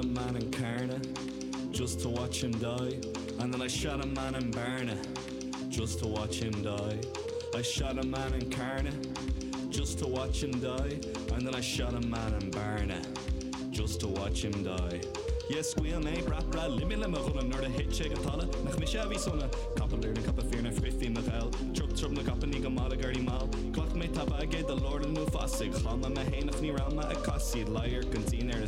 a man in Carna just to watch him die and then I shot a man in Bearna just to watch him die I shot a man in Carna just to watch him die and then I shot a man in Bearna just to watch him die yeah scaoil mé brat brat limit le mo ghunna nuair a thit sé go talamh nach mise a bhí sona capall ar na capa fir na frithfí mo gheal trup trup na gcapainní go mall i gairí mall ghlac mé tapa aige do lorlann nó fasaigh chlann mé mé féin ach ní raibh mé ag casaoid leighearc an tSín ar a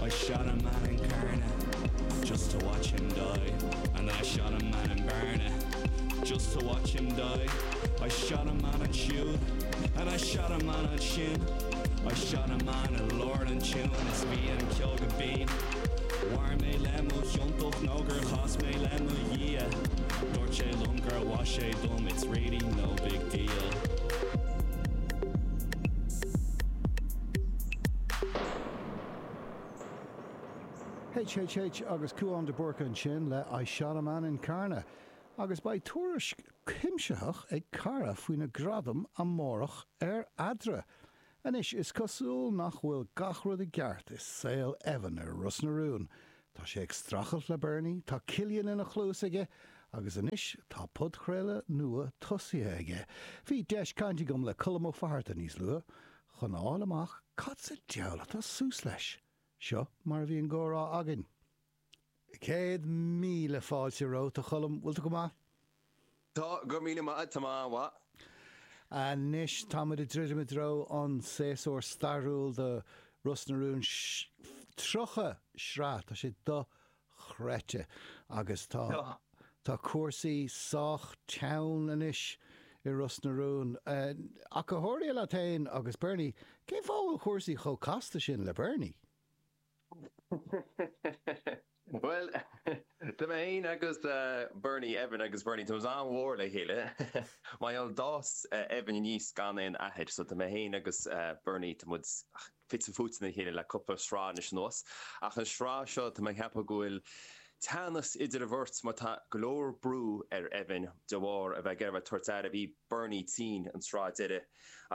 I shot a man in Carna Just to watch him die And then I shot a man in Bearna Just to watch him die I shot a man ansiúd And I shot a man ansin I shot a man i lár an tiúin Is bhí an ceol go binn Mhair mé le mo chiontócht Nó gur chas mé le mo Dhia Dúirt sé liom gur mhaith sé dom It's really no big deal HHH agus Cúán de Búrca ansin le I Shot a Man in Carna agus beidh tuairisc cuimsitheach ag Cearbhall faoi na gradaim amárach ar Eadra. Anois, is cosúil nach bhfuil gach rud i gceart i saol Evan ar Ros na Rún. Tá sé ag strachailt le Berni, tá Cillian ina chluas aige agus anois tá podchraoladh nua tosaithe aige. Bhí deis caint agam le Colm Ó Fatharta níos luaithe. chun a fháil amach cad sa diabhal atá suas leis. Seo mar a bhí an gcomhrá againn. Céad míle fáilte romhat, a Choilm. Bhfuil tú go maith? Tá, go raibh míle maith agat. Tá mé an-mhaith. Anois tá muid ag druidim i dtreo an séasúr stairiúil do Ros na Rún. 30 sraith. Tá sé chreidte agus tá tá cúrsaí sách teann anois i Ros na Rún. Ach go háirithe leat fhéin agus Berni, cén fáth a bhfuil cúrsaí chomh casta sin le Berni? Bhuel, tá mé fhéin agus Berni, Evan agus Berni, tá muid an-mhór le chéile. Mar gheall, d'fhás Evan aníos gan aon athair so tá mé fhéin agus Berni, tá muid, fite fuaite le chéile le cúpla sraith anois anuas. Ach an sraith seo, tá mé ag ceapadh go bhfuil teannas idir an bheirt mar tá go leor brú ar Evan de bharr a bheith ag iarraidh a bheith ag tabhairt aire. Bhí Berni tinn an sraith deiridh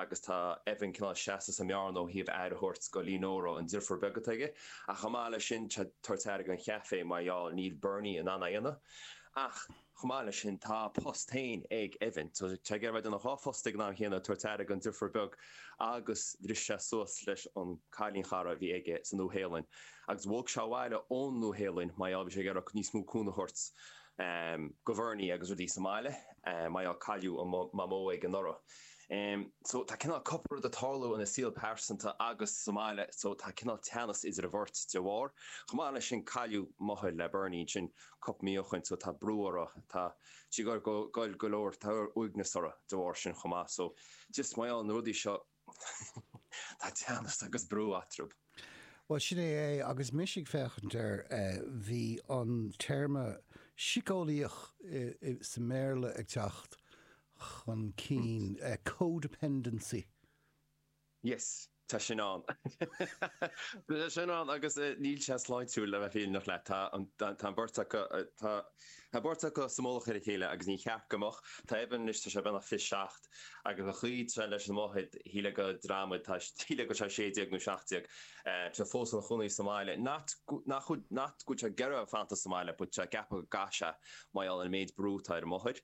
agus tá Evan cineál seasta sa mbearna ó thaobh aire a thabhairt go Lenora, an deirfiúr beag atá aige. Ach chomh maith leis sin tá sé ag tabhairt aire don chaifé mar gheall níl Berni in ann é a dhéanamh. Ach. Chomh maith leis sin tá a phost féin ag Evan so tá sé ag iarraidh an dá phost ag an am chéanna ag tabhairt aire don driofúr beag agus bhris sé suas leis an cailín chara a bhí aige sa Nua Shéalainn agus bhog sé abhaile ón Nua Shéalainn mar gheall bhí sé ag iarraidh níos mó cúnamh a thabhairt go Bherni agus rudaí sa mbaile mar gheall cailleadh an Mamó aige anuraidh so tá cineál cúpla rud ag tarlú ina shaol pearsanta agus sa mbaile so tá cineál teannas idir an bheirt de bharr. Chomh maith leis sin cailleadh máthair le Berni ansin cúpla mí ó shoin so tá brú uirthi. Tá sí ag gol go leor. Tá uaigneas uirthi de bharr sin chomh maith so just mar gheall ar na rudaí seo tá teannas agus brú eatrabh. Bhuel sin é é agus mise ag féachaint air, bhí an téarma síceolaíoch sa mBéarla ag teacht chun cinn, co-dependency. Yes, tá sin ann. Tá sin ann agus níl sé sláintiúil le bheith fírinneach leat. Tá an, tá an beirt acu, tá, tá an beirt acu sa mullach ar a chéile agus ní ceart go mbeadh. Tá Evan anois, tá sé beagnach fiche seacht agus an chaoi a bhfuil sé leis an máthair, shílfeá go, you know, shílfeá go bhfuil sé sé déag nó seacht déag. Tá sé fós ina chónaí sa mbaile. Not go, nach, not go bhfuil sé ag iarraidh fanacht sa mbaile but tá sé ag ceapadh go gcaithfidh sé mar gheall ar an méid brú atá ar an máthair.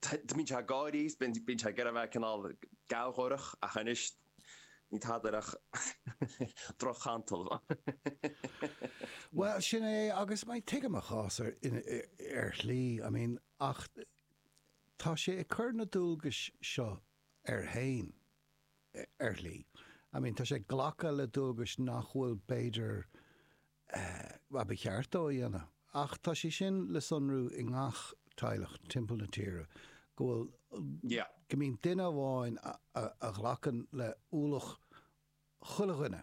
Bíonn sé ag gáirí, bíonn sé ag iarraidh a bheith cineál gealgháireach ach anois níl tada air ach droch-chantal. Bhuel, sin é agus tuigim a chás ar shlí, I mean, ach tá sé ag cur na dualgais seo air fhéin ar shlí, I mean tá sé ag glacadh le dualgais nach bhfuil b'fhéidir Bhuel, ba cheart dó a dhéanamh. Ach tá sé sin le sonrú i ngach teaghlach timpeall na tíre, go bhfuil, go mbíonn duine amháin a ghlacann le ualach chuile dhuine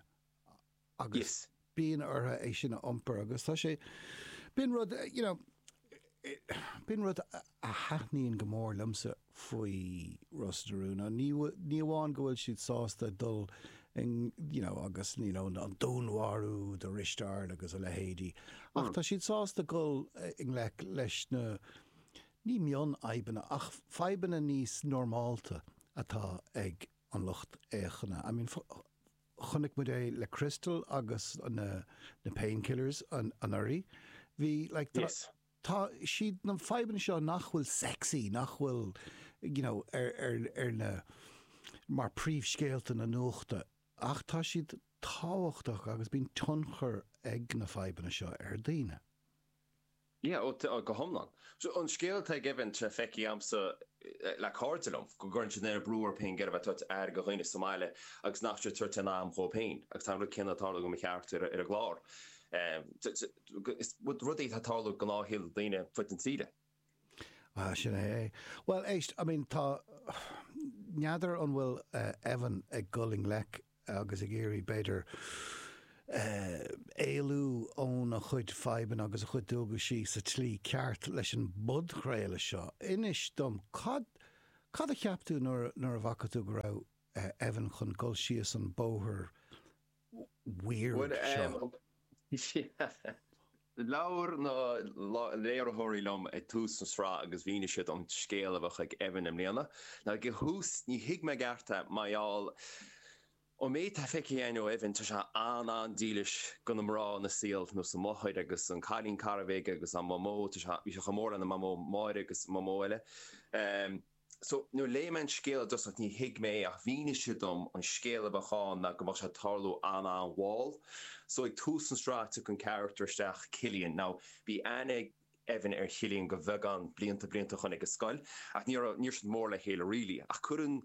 agus bíonn orthu é sin a iompar agus tá sé, bíonn rud, you know, B'in rud a thaitníonn go mór liomsa faoi Ros na Rún, ná ní amháin go bhfuil siad sásta dul i you know agus you know an dúnmharú do Risteard agus a leithéidí ach tá siad sásta dul i ngleic leis na, ní mion-fhadhbanna, ach fadhbanna níos normálta atá ag an lucht fhéachana. I mean, Chonaic muid é le Crystal agus na Painkillers anuraidh. Bhí like tá, tá, siad na fadhbanna seo nach bhfuil sexy, nach bhfuil you know ar, ar, ar na, mar príomhscéalta na nuachta ach tá siad tábhachtach agus bíonn tionchar ag na fadhbanna seo ar daoine. Yeah, oh, go hiomlán. An scéal atá ag Evan tá sé feicthe a'msa le cairde liom, go gcuireann siad an oiread brú orthu féin ag iarraidh a bheith ag tabhairt aire go dhaoine sa mbaile agus nach bhfuil siad ag tabhairt aon am dhóib féin agus tá an rud céanna ag tarlú go mo charachtar ar an gclár. Is rud é atá ag tarlú i ngnáthshaol daoine ar fud na tíre. Ah, sin é é. Bhuel, éist, I mean, tá, n'fheadar an bhfuil Evan ag dhul i ngleic agus ag iarraidh, b'fhéidir, eh, éalú óna chuid fadhbanna agus a chuid dualgaisí sa tslí ceart leis an bpodchraoladh seo. Inis dom, cad, cad a cheap tú nuair, nuair a bhfaca tú go raibh Evan chun dhul síos an bóthar, weird seo. Labhair na léiritheoirí liom ag tús an sraith agus mhínigh siad dom an scéal a bheadh ag Evan i mbliana. Ag an thús ní thuig mé i gceart é mar gheall ón méid atá feicthe againn ó Evan tá sé an-an-dílis do na mná ina saol nós a mháthair agus an cailín cara a bhí aige agus an mamó tá sé bhí sé chomh mór lena mamó Máire agus an mamó eile. So, nuair léigh mé an scéal i dtosach ní thuig mé é ach mhínigh siad dom an scéal a bheadh ann ná go mbeadh sé ag tarlú an-an-mhall. So, ag tús an sraith tagann carachtar isteach, Cillian. Now, bhí aithne ag Evan ar Chillian go bheagán blianta, blianta ó shin ag an scoil ach ní raibh, ní raibh siad mór le chéile really ach cuireann,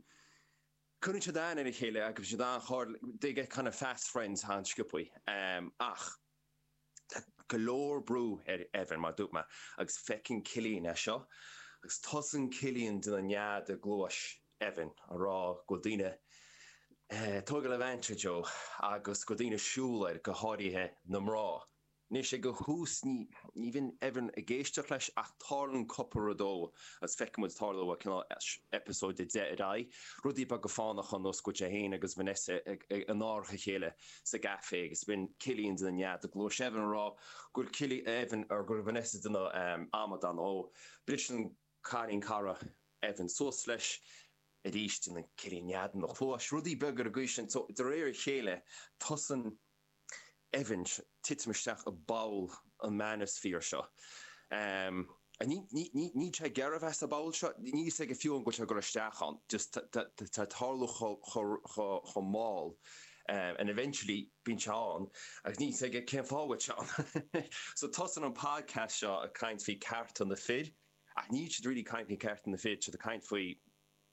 cuireann siad aithne ar a chéile agus bhí siad an-chár, they get kind of fast friends an-sciopaí. Ach. Tá go leor brú ar Evan, mar dúirt mé, agus feiceann Cillian é seo agus tosaíonn Cillian ag déanamh nead i gcluais Evan a rá go bhfuil daoine ag tógáil advantage dhó agus go bhfuil daoine ag siúl air, go háirithe na mná. Anois ag an tús ní bhíonn Evan ag éisteacht leis ach tarlaionn cúpla rud dó agus feiceann muid ag tarlú ó cineál eipeasóid a deich ar aghaidh, rudaí beaga fánacha nós go bhfuil sé féin agus Vanessa in árach a chéile. sa gcafé agus bíonn Cillian ag déanamh nead i gcluais Evan a rá go bhfuil Cillian Evan or go bhfuil Vanessa ag déanamh amadán dhó briseann cailín cara Evan suas leis arís déanann Cillian nead ina chluais rudaí beaga ar an gcaoi sin so de réir a chéile tosaíonn Evan ag titim isteach i bpoll an manosphere seo. Níl sé ag iarraidh a bheith sa bpoll seo. Níl fhios aige fiú an bhfuil sé ag goil isteach ann. Just tá sé ag tarlú chomh mall and eventually bíonn sé ann agus níl fhios aige cén fáth a bhfuil sé ann. So tosaíonn an podcast seo ag caint faoi cearta na fir ach níl siad really ag caint faoi cearta na fir, tá siad ag caint faoi.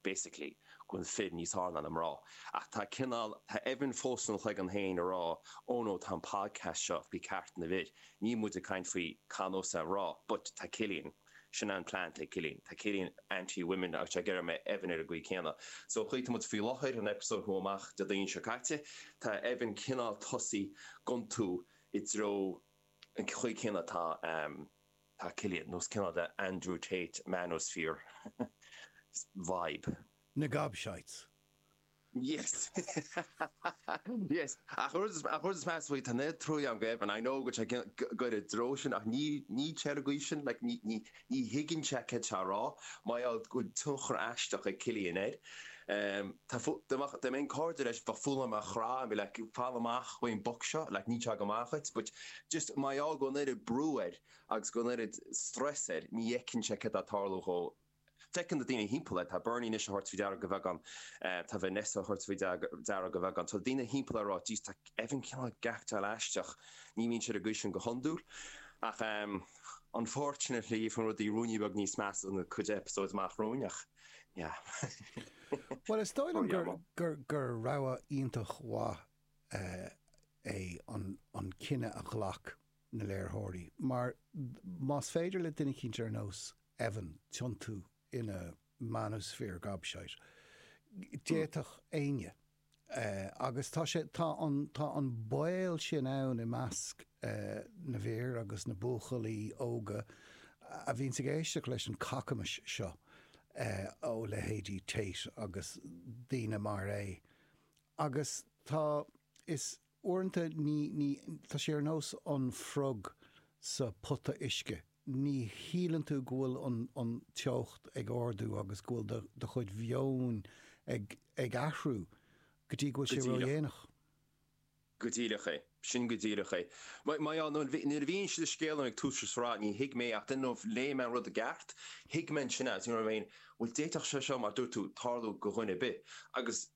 basically, go bhfuil fir níos fhearr ná na mná. Ach tá cineál, tá Evan fós sa chloigeann féin a rá, oh no, tá an podcast seo faoi cearta na bhfir, níl muid ag caint faoi cineál nós na mná. But tá Cillian, sin é an plean ag Cillian, tá Cillian anti women, agus ag iarraidh go mbeidh Evan ar an gcaoi céanna. So an chaoi a bhfuil muid faoi láthair, an eipeasóid a chuaigh amach Déardaoin seo caite, tá Evan cineál ag tosaí ag iontú i dtreo an chaoi céanna atá, Tá Cillian nós cineál the Andrew Tate manosphere vibe. Na gobshites. Yes! Yes! Ach an rud is measa faoi, tá neart trua agam do Evan, I know go bhfuil sé ag goil i dtreo sin ach ní ceart go dtí sin, like ní thuigeann sé cad tá a rá, mar gheall go bhfuil tionchar aisteach ag Cillian air. Dá mbeinn cairde leis bheadh fonn orm é a chraitheadh and be like, fan amach ón boc seo, like níl sé go maith dhuit, but Just mar gheall go bhfuil an oiread brú air agus go bhfuil an oiread stress air ní fheiceann sé cad tá ag tarlú dhó. Feiceann na daoine thimpeall air. Tá Berni anois á thabhairt faoi deara go bheagán. Tá Vanessa á thabhairt faoi deara go bheagán. Tá daoine thimpeall air a rá Jeez tá Evan cineál ag aicteáil aisteach. Ní bhíonn sé ar an gcaoi sin go hiondúil. Ach unfortunately faigheann rudaí ruainne beag níos measa in cuid episodes amach romhainn ach yeah. Bhuel is dóigh liom gur rogha iontach mhaith é an cinneadh a ghlac na léiritheoirí mar más féidir le duine cineálta ar nós Evan tiontú ina manosphere gobshite d'fhéadfadh éinne agus tá sé tá an tá an baol sin ann i measc na bhfir agus na buachaillí óga a bhíonns ag éisteacht leis an cacamais seo ó leithéidí Tate agus daoine mar é Agus tá, is uaireanta ní, ní, tá sé ar nós an frog sa pota uisce, ní shíleann tú go bhfuil an, an teocht ag ardú agus go bhfuil do, do chuid meoin ag, ag athrú go dtí go bhfuil sé ró-dhéanach. Go díreach é. Sin go díreach é. Má, má dheá, nuair, nuair a mhínigh siad an scéal dom ag tús an sraith ní thuig mé ach dunno if léigh mé an rud i gceart, thuig mé ansin é sin, you know what I mean, bhuel d'fhéadfadh sé seo mar dúirt tú tarlú go dhuine ar bith agus,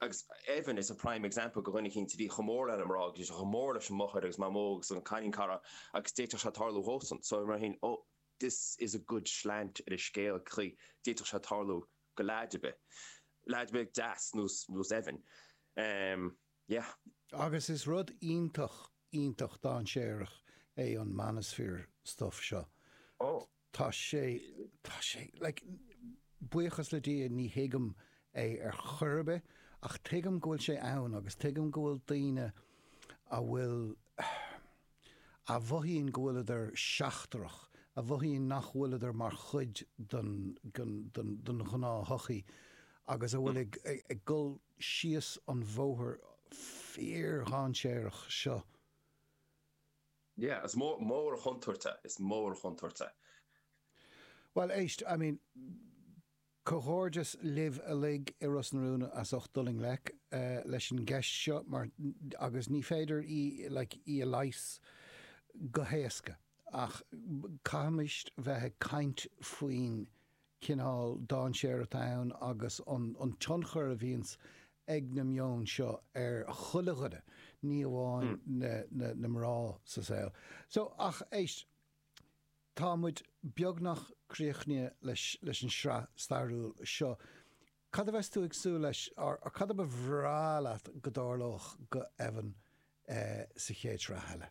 agus Evan is a prime example de dhuine eicínt a bhí chomh mór leis na mná agus bhí sé chomh mór lena mháthair agus mamó agus an cailín cara agus d'fhéadfadh sé tarlú dhósan so mar sin oh this is a good slant ar an scéal chaoi a d'fhéadfadh sé tarlú go leaid ar bith leaid ar bith deas ar nós Evan em yeah. Agus is rud iontach iontach dainséarach é an manosphere stuff seo. Oh. Tá sé, tá sé, like, buíochas le Dia ní thuigim é ar chor ar bith ach tuigim go bhfuil sé ann agus tuigim go bhfuil daoine a bhfuil, a mhothaíonn go bhfuileadar seachtrach, a mhothaíonn nach bhfuileadar mar chuid den, den, den, den ghnáth-shochaí agus a bhfuil ag, ag, ag dul síos an bóthar fíor-dhainséarach seo. Yeah, is mór an chontúirt é, is mór an chontúirt é. Bhuel, éist, I mean, comhghairdeas libh uilig i Ros na Rún as ucht dul i ngleic leis an gceist seo mar, agus ní féidir í, like, í a leigheas go héasca ach caithfimid bheith ag caint faoin cineál dainséir atá ann agus an tionchar a bhíonns ag na meonta seo ar chuile dhuine, ní amháin na mná sa saol. So, ach éist, tá muid beagnach críochnaithe leis an sraith stairiúil seo. Cad a bheas tú ag súil leis, or cad a ba bhreá leat go dtarlódh go Evan sa chéad sraith eile?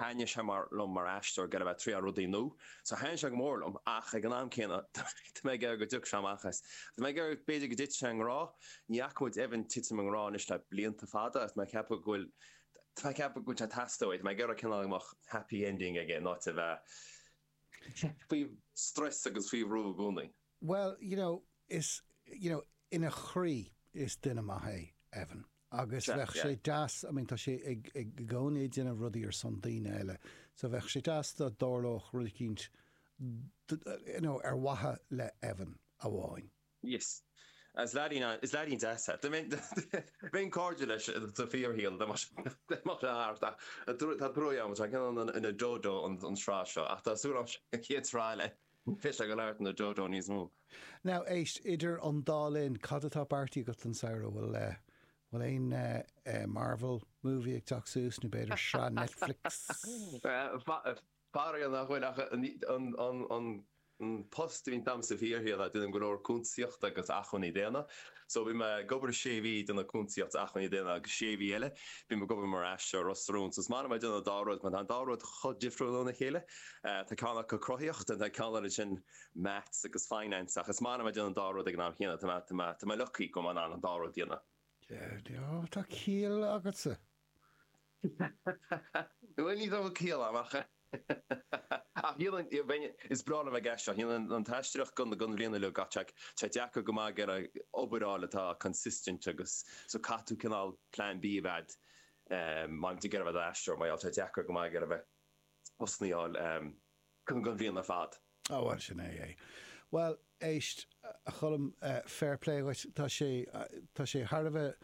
Thaitnigh sé liom mar aisteoir go mbeadh mé ag triail rudaí nua. So thaitin sé go mór liom ach ag an am céanna tá mé ag iarraidh go dtiocfadh sé amach as. Tá mé ag iarraidh b'fhéidir go dtitfidh sé i ngrá. Ní fhaca muid Evan titim i ngrá anois le blianta fada agus tá mé ag ceapadh go bhfuil tá mé ag ceapadh go bhfuil sé ag teastáil uaidh. Tá mé ag iarraidh cineál go mbeadh happy ending aige in ionad a bheith faoi strus agus faoi bhrú i gcónaí. Bhuel, you know, is, you know, ina chroí is duine maith é Evan. agus bheadh sé deas, I mean tá sé ag, ag i gcónaí ag déanamh rudaí ar son daoine eile so bheadh sé deas dá dtarlódh rud eicínt you know ar mhaithe le Evan amháin. Yes. Is leaidín an, is leaidín deas é. I mean bheinn cairdiúil leis sa bhfíorshaol dá mbeadh sé, dá mbeadh sé thart ach tá truagh agam tá sé cineál ina dodo an tsraith seo ach tá súil agam an chéad sraith eile Ní bheidh an character ina dodo níos mó. Now, éist, idir an dá linn, cad atá beartaithe agat don samhradh? Bhfuil eh. bhfuil aon eh. eh. Marvel movie ag teacht suas nó b'fhéidir sraith Netflix? Faraor nach bhfuil ach an. an. an. an post a bhíonn agamsa fhéin, tá mé, ag déanamh go leor cuntasaíochta agus acmhainní daonna. So bhí mé ag obair sé mhí ag déanamh cuntasaíocht agus acmhainní daonna agus sé mhí eile bhí mé ag obair mar aisteoir ar Ros na Rún. So is maith liom a bheith ag déanamh an dá rud mar tá an dá rud chomh difriúil óna chéile. Tá ceann acu cruthaíoch and tá ceann eile ansin maths agus finance ach is maith liom a bheith ag déanamh an dá rud ag an am chéanna. Tá mé lucky go bhfuil mé in ann an dá rud a dhéanamh. Tá ciall agatsa. Bhuel, ní bheadh ciall ann ach ach níl an, is breá liom a bheith ag déanamh an an t-aisteoireacht don don bhliain uilig ach tá sé deacair go maith ag iarraidh obair a fháil atá consistent agus so caithfidh tú cineál plan B a bheith a'd má bhíonn tú ag iarraidh a bheith i d'aisteoir mar gheall tá sé deacair go maith ag iarraidh a bheith osnaíoch a fháil. Cúnamh don bhliain ar fad. Ó, bhuel, sin é é. Bhuel, éist, a Choilm, fair play dhuit, tá sé, tá sé thar a bheith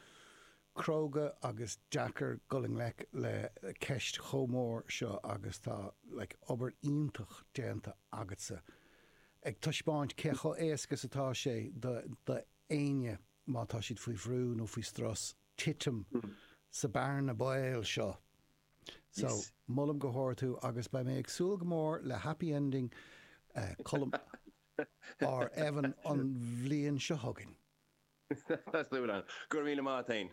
cróga agus deacair dhul i ngleic le ceist chomh mór seo agus tá, like, obair iontach déanta agatsa ag taispeáint cé chomh éasca is atá sé do, do éinne má tá siad faoi bhrú nó faoi strus titim sa bhearna baoil seo. So, Yes. molaim go hard thú agus beidh mé ag súil go mór le happy ending Colm ar Evan an bhliain seo chugainn. Tá súil a'm. Go raibh míle maith a'd.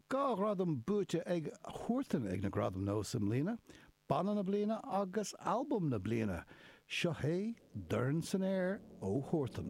Dhá ghradam buaite ag Huartan ag na Gradaim Nós i mbliana, Banna na Bliana agus Albam na Bliana. Seo hé Dorn san Aer ó Huartan.